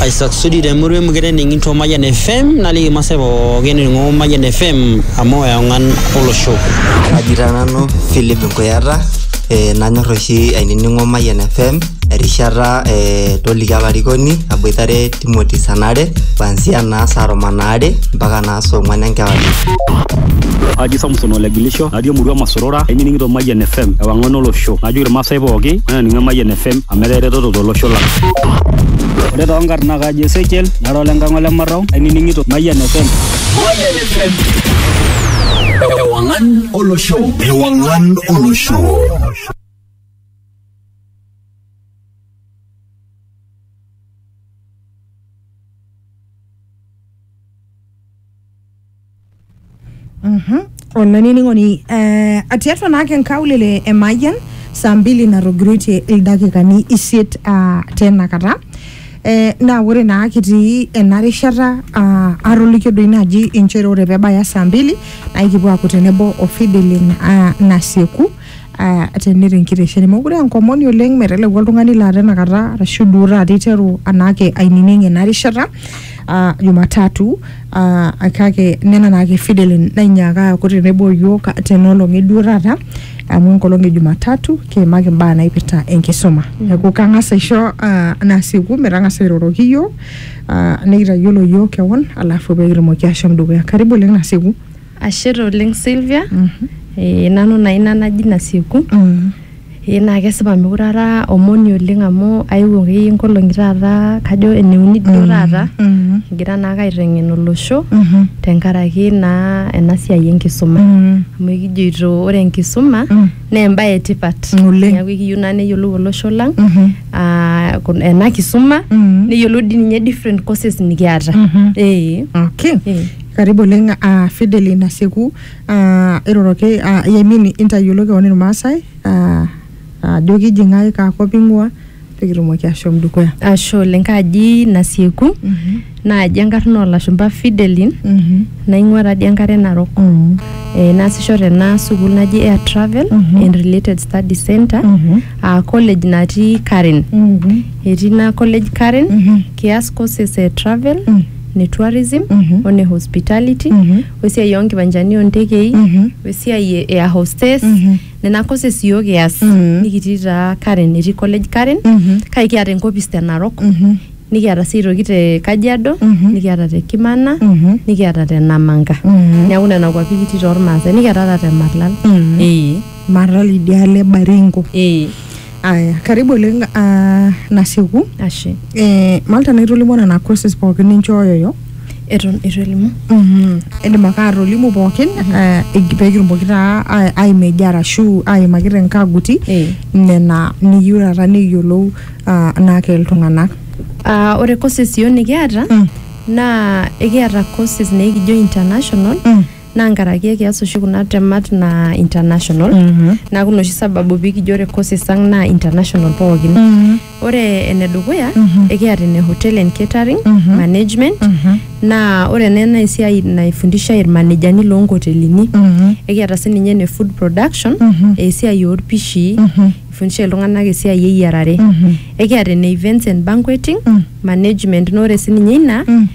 aisasudi temurua emukete ening'ito Mayian FM naliki irmaasai pookin ening'o Mayian FM amu eong'an olosho. Kaji taa nanu Philip Nkuyata eh, nanyor oshi ainining'o Mayian FM erishata eh, toliki olarikoni aboitare Timothy Sanare kuanzia naa saa tomon aare mpaka naa saa ong'wan enkewarie. Haji Samson Olegilisho natii emurua Masorora ainining'ito Mayian FM ewang'an olosho najoki irmaasai pooki mainining Mayian FM amu etaa eretoto tolosho lang. Ore too nkarn naa kaji Ezekiel nara ole Nkang'a ole Marrau ainining'ito Mayian FM. Mayian FM. Ewang'an olosho. Ewang'an olosho. olainining'oni eh, tiatua naake nkaulele e Mayian saa mbili natogiroitie ildakikani isiet ah, tena kata eh, naa ore naa kitii ena rishata ah, atolikio doi naaji inchere ore pebaya saa mbili naa ikipuo aaku tenebo o Fidelin ah, Nasieku Ah, teneta enkitesheni mokure enkomoni oleng meteleku oltung'ani laa tenakata arashu duo taata iteru anaake ainining ena rishata ah, jumatatu ah, kake nena naake fidelin nainyaaka aaku tenebo yiok tenolong eduo taata amu enkolong e jumatatu kiimaki imbaa naipirta enkisuma neeku kang'as aisho ah, nasieku metang'asa airoroki yiok ah, nikitayiolo yiok kewon alafu pekitumoki ashom dukuya karibu oleng nasieku Ashe taa oleng Sylvia. Eh, nanu naa ina naji Nasieku. Eh, naa kesipa mekure ara omoni oleng amu aewuo akeyie nkolong'i taata kajo eneuni duo taata kigira naake aiteng'en olosho tenkaraki naa ena siai enkisuma. Amu ekijoito ore enkisuma naa embae etipat. Oleng. Neeku ekiyieu naa neyiolou olosho lang ah, kun- ena kisuma neyiolou dii ninye different courses nikiata. Eh. Okay. Eh. Karibu oleng uh, Fideli Nasieku uh, iroroki uh, yemin intayiolo keon Irmaasai uh, ajo uh, kiji ng'ae kaakop ing'ua pikitumoki ashom dukuya. Ashe oleng kaaji Nasieku mm -hmm. naaji enkarna oolashumba Fidelin mm -hmm. naing'ua taadi enkare Narok mm -hmm. e, naasisho tena sukuul naji Air Travel mm -hmm. and Related Study Center mm -hmm. uh, college natii Karen mm -hmm. etii ina college Karen mm -hmm. kias courses e travel mm -hmm. ne tourism o ne hospitality wesiai oo nkiwanjani oo ntekei wesiai e air hostess nena courses iyiook kias nikitii taa Karen etii college Karen kake kiata enkopis te Narok nikiata sii aitoki te Kajiado nikiata te Kimana nikiata te Namanga neeku nena kuapi kitii tormaasai nikiata ata te Marlal ee Marlal idialo e Baringo. ee. aya karibu oleng uh, nasieku ashe eh, malta naitolimu nena courses pookin ninchooyoyo eton itu elimu Mhm. indim ake atolimu pookin eh, ig- peekitumoki taa ai- aimeji arashu aimaki tenkaguti Eh. nena niyieu taata neyiolou ah, naake iltung'anak Ah, ore courses yiok nikiata Mm. naa ekiata courses naikijo international Mm. naa nkaraki ekias oshi kuna temat naa international naaku ina oshi sababu pikijo ore courses ang naa international pookin ore enedukuya ekiata ene hotel and catering management naa ore ena naa esiai naifundishae irmanejani loonkotelini ekiata sininye ene food production esiai orpishii ifundishae iltung'anak esiai eyiarare ekiata ene events and banqueting management naa ore sininye ina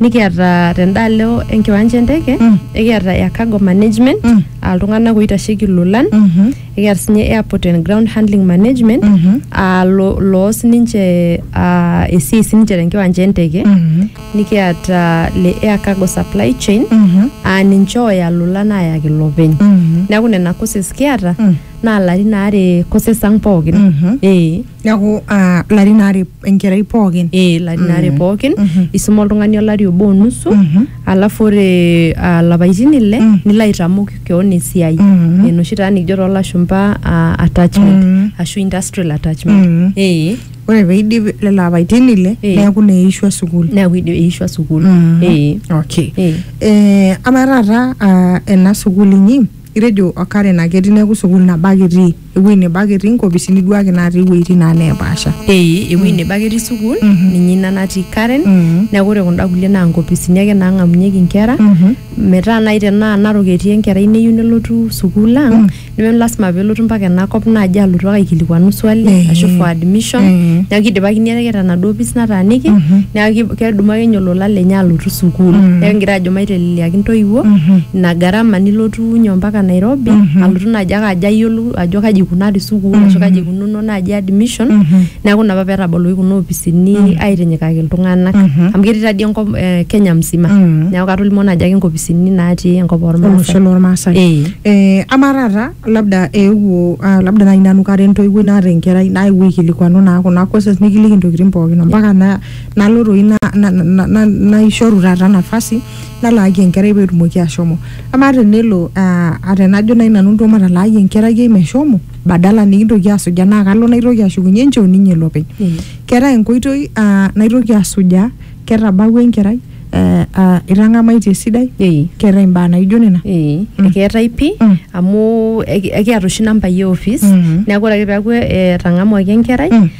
nikiata tendaalo enkiwanja enteke Mm. ekiata ya cargo management Mm. aa iltung'anak oitasheki ilolan Mhm. ekiata sinye airport and ground handling management Mhm. aa lo- loos ninche aa, esiai sininche tenkiwanja enteke Mhm. nikiata le air cargo supply chain Mhm. aa ninche ooya ilolan aayaki ilopeny Mhm. neeku nena courses kiata Mm. naa larin aare courses ang pookin Mhm. ee neaku ah, larin aare enkerai pookin eh, larin aare Mm. pookin Mhm. isuma oltung'ani olari obo onusu Mhm. alafu ore ah, lapaitin ile Mm. nilo aitamok keon esiai Mhm. enoshi taa nikijo toolashumpa ah, attachment Mm. ashu industrial attachment Mm. eh, ore peidip lelo apaitin ile Eh. neaku neishua sukuul neaku idi- eishua sukuul Mhm. eh, okay eh. Eh, ama taata ah, ena sukuul inyi itejo okaren ake etii neaku sukuul nabo ake etii ewueji nebo ake etii nkopisini duo ake natii iwueitin naa neepaasha ee ewuei nebo ake etii sukuul ninye ina natii Karen Mhm. neeku ore kunda kulie naa nkopisini ake naang'amunyeki inkera metaa naaji tenaa Narok etii enkerai neyieu nelotu sukuul ang neme lasima peelotu mpaka enakop naaji alotu ake aikilikuanu swali Eh. ashu for admission Eh. neeku kidipakini ake tenaduo opis nataaniki neeku ki- kedumu ake ninye olola lenye alotu sukuul neeku kingira ajo maiteleliaki intoiwuo ina gharama nilotu nyoo mpaka Nairobi alotu naaji ake ajo ayiolou ajo kaji ikunari sukuul ashu kaji ikununo naaji admission neeku ina apa petaboloki kuna opisini aitinyikaki iltung'anak amu ketii tadii enkop eh, Kenya msima neeku katolimuo naaji ake inkopisini natii enkop olosho ormaasai lormaasai Eh. eh, amaa taata labda eewuo ah, labda naaji nanu kara entoiwuoi naata enkerai naewuo aikilikuanu naa kuna courses nikiliki intokitin pookin ompaka na- nalo toi na- na- na- na- naishoru taata nafasi nalaaki enkerai pee etumoki ashomo amaa tenelo ah, ah, tenajo nai nanu nto matalaaki enkerai ai meshomo badala nikintoki asujaa naa kalo naitoki ashukunye nchoo ninye lopeny Mm. keetae enkoitoi ah, naitoki asujaa ketabawua enkerai eh, ah, itang'amaitie esidai Ei. keetae imbaa naijo nena Ee, Mm. ekeetae pii Mm. amu eki- ekiata oshi nambai e office Mhm. neeku ore ake peeku etang'amuaki enkerai Mm.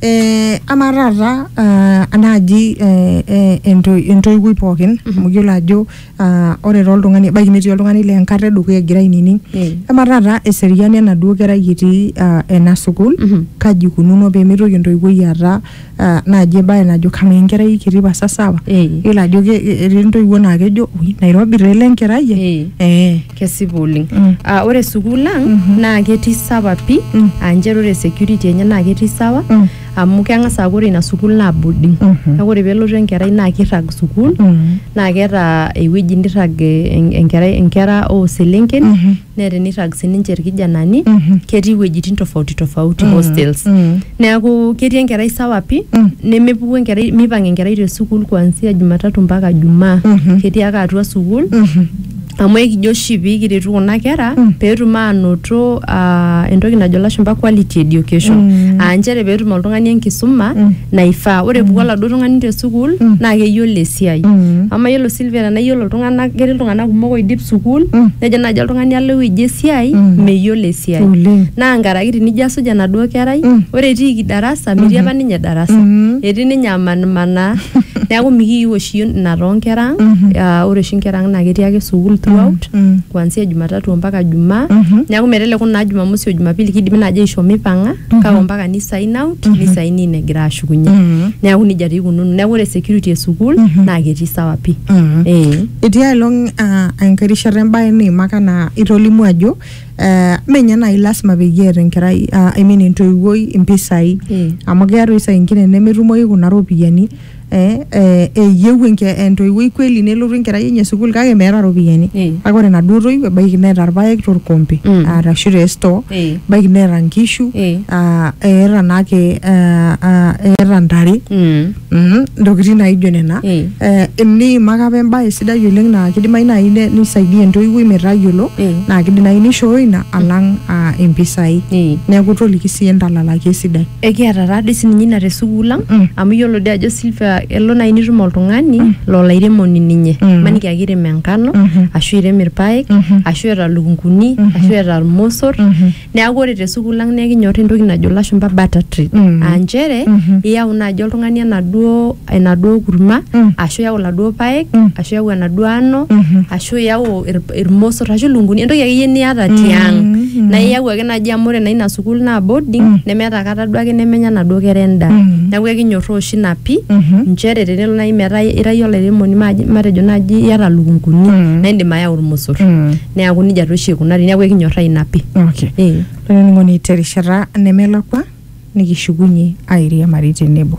Eh, amaa taata ah, naaji eh, eh, ento- entoiwuoi pookin amu iyiolo ajo ah, ore toltung'ani ebaiki netii oltung'ani le enkata edukuya egira ainining Mm. amaa taata eseriani enaduo kerai etii ah, ena sukuul Mhm. kaji ikununo peemitoki entoiwuoi aata ah, naaji ebae najo kamaa enkerai kiti pasa sawa Eh. iyiolo ajo ke- etii intoiwuo naa kejo "Ui, nairobi taa ele enkerai ai." Eh. Eh. Kesipa oleng. Mm. Ah, ore sukuul ang Mhm. naa ketii sawa pi Mm. aa nchere ore security enye naa ketii sawa Mm. amu keng'as aaku ore ina sukuul naa boarding. Mhm. Neeku ore peelotu enkerai naa kirrag sukuul Mm. naa keeta ewueji nirrag eh, en- enkerai inkera oo selenken Mhm. neeta enirrag sininche irkijanani Mhm. ketii iwuejitin tofauti tofauti Mm. hostels. Mm. Neeku ketii enkerai sawa pi Mm. nemepuku enkerai mipang enkerai te sukuul kuanzia Jumatatu mpaka Jumaa. Mhm. Ketii ake atua sukuul Mhm. amu ekijo oshi pikiretu kuna kera mm. petum anoto uh, entoki najo lashumba quality education mm. aa nchere petum oltung'ani enkisuma mm. naifaa ore puku mm. oladuo tung'ani te sukuul mm. naa keyiolo esiai mm. ama yiolo Silvia tenaa yiolo iltung'anak ketii iltung'anak kumok oidip sukuul mm. nejo naaji oltung'ani alo ewueji esiai mm. meyiolo esiai mm. naa nkaraki tinijo asuj enaduo kerai mm. ore etiiki darasa metii mm-hmm. apa ninye darasa mm. etii ninye amanmanaa neaku mikiyieu oshi ina too nkera ang mm -hmm. ore oshi nkera ang naa ketii ake sukuul throughout mm -hmm. kuanzia jumatatu ompaka jumaa mm -hmm. neaku meteleku naa jumamosi o jumapili kidimi naaji aisho mipang'a mm -hmm. kake ompaka ni sign out mm -hmm. ni sign in egira ashukunye mm -hmm. neaku nejia tii ikununo neaku ore security e sukuul mm -hmm. naa ketii sawa pii mm -hmm. eh. etii aelong uh, enkae rishata embaye niimaka naa itolimu ajo eh, mme ninye naaji lasima peyie eeta enkerai ah, I mean entoiwuoi impisai Mm. amu keeta oshi saa ingine nemetumoyu kuna ropiyiani eh, eh, eyieu enke- entoiwuoi kweli nelotu enkerai enye sukuul kake meeta ropiyiani Eh. kake ore enaduo toiwuo ebaiki neeta irpaek torkompe Mm. arashu te store Eh. ebaiki neeta nkishu Eh. ah, eeta naake ah, ah, eeta ntare Mm. Mhm, ntokitin naijo nena Eh. Eh, eniimaka apa embae sidai oleng naa kidimayu naaji ne- nisaidia entoiwuoi metayiolo Eh. naa kidimayu nishooyo ina alang ah, impisai Eh. neeku toliki sii entalalaki esidai ekiata taadii sininye ina te sukuul ang Mm. amu iyiolo dii ajo silvia elo naaji nitum oltung'ani lolo airemoni ninye Mm. maniki ake irem enkano Mhm. ashu irem irpaek Mhm. ashu eeta lukunguni ashu eeta irmosor Mhm. Neaku ore te sukuul ang naa ekinyor entoki najo ilashumba butter tree. Mm. Aa nchere Mhm. iyau naaji oltung'ani enaduo enaduo kurma Mm. ashu iyau iladuo paek Mm. ashu iyau enaduo ano Mhm. ashu iyau ir- irmosor ashu ilunguni entoki akeyie niata Mm. tiang. Mm. Naa iyau ake naaji amu ore naa ina sukuul naa boarding Mm. nemeeta kata duake nemenya naduo kera endaa. Mm. Neaku ekinyorraa oshi ina pii Mhm. nchere tenelo naaji metaa ira iyie olairemoni maaji- matejo naaji iyata ilukunguni Mm. naa indim ayau irmosor. Mm. neaku nejia taa oshi eikunari neaku ekinyorraa ina pi okay. eh. olainining'oni terishata nemelakua nikishukunye airiamari tenebo